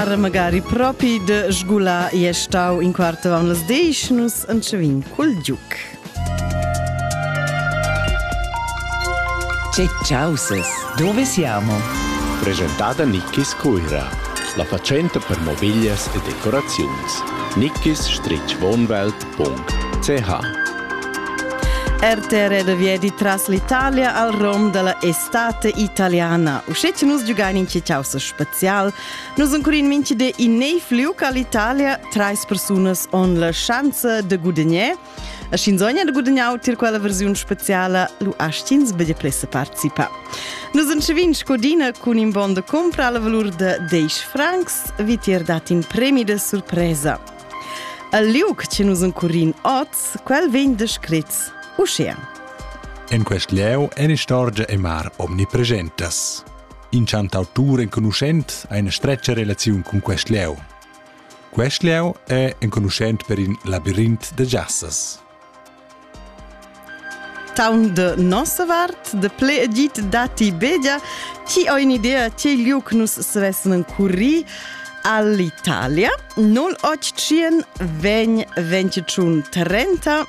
Ara magari propi de sgula e stau in quarto an las deis nus entschevin cul giuc. Che causes, dove siamo? Presentada Nickis Cuira, la facenta per mobiglias e decoraziuns. nickis-wohnwelt.ch RTR de viedi tras l'Italia al rom della estate italiana. Uscete nus giugain in ciao special Nus sun curin minchi di in neiv liuca l'Italia, trais persunas on la schanza de gudagner. A Shinzogna de gudagnar tir quella versiun speciala, lu astins bege plessa participa. Nus en Scevin scodina cun in bon de compra alla valur de 10 francs, vi tier dat in premi de surpresa. Al liuc che nus en curin oz, quel vegn descrit ocean. En quest lieu en istorgia e mar omnipresentas. In chantautur enconuschent ha ina stretga relaziun cun quest lieu. Quest lieu è enconuschent per in labirint da jassas. Town de nossa vart, de ple edit dati bedia, ci ho in idea ce liuc nus svesnen curri all'Italia 081 vegn 25 30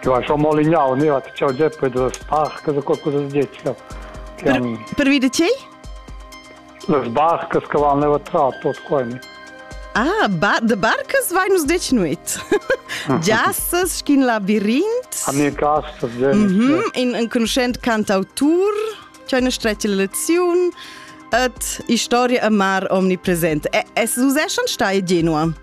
Che ha schon molignau, ne hat ciao Geppe das Park, so qualcosa di dettia. Per, per vide tgei? Les barcas che vanno trato qua. Ah, ba de barcas vai nos dec nuit. Giassas schin la birint. A ne castas, mhm, in un conoscent cantautur, c'è una streccia lezione et historia amar omnipresent. E es usè schon stai genua?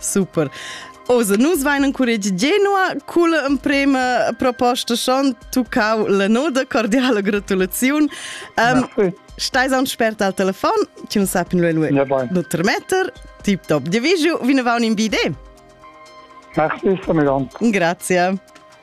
Super. Osa, nus vain encuregi Genua cul emprema proposta schon tuccau la noda cordiala gratulaziun. Um, Stais aun spert al telefon, ci nu sapin lu lui. Nu termetter, tip top. Di vigiu, vine vaun in bide. Merci, Samegan. Grazie.